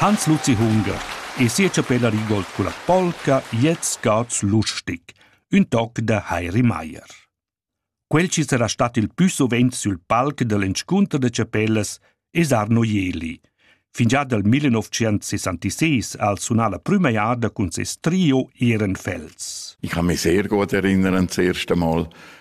Hans Luzi Hunger e sia chapella Rigold culla polca Jet Scouts lustig, ün toc da Heiri Maier. Quel chi sarà stat il pü suvent sül palc da l'inscunter da chapellas es Arno Jeli. Fingià dal 1966 al sunà la prüma jada cun ses trio Ehrenfels. Ich kann mich sehr gut erinnern, das erste Mal,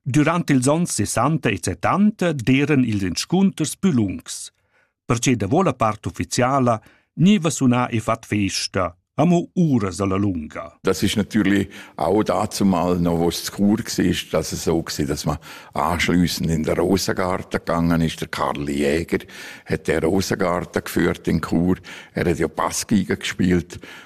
Durant ils onns sessanta e settanta d'eran ils inscunters plü lungs. Perche davo la part ufficiala gniva sunà e fat festa, amo uras alla lunga. Das ist natürlich auch dazu mal noch was zu cool war, dass es so war, dass man anschließend in den Rosengarten gegangen ist. Der Karl Jäger hat den Rosengarten geführt in Chur. Er hat ja Bass gespielt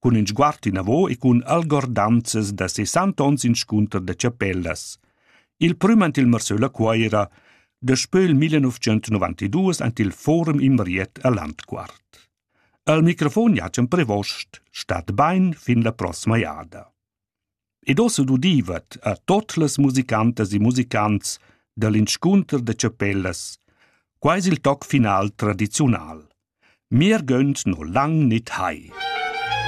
cun ün sguard inavo e cun algordanzas da sessant ons inscunter da chapellas. Il prüm ant il Marsöl a Cuoira, daspö il 1992 ant il Forum Imriet a Landquart. Al microfon jatschan prevost, stat bain fin la prossima jada. Ed ossa dudivat a tot las musicantas e musicants dall'inscunter da chapellas. Quai es il toc final tradiziunal. Mir gönnt no lang nit hai.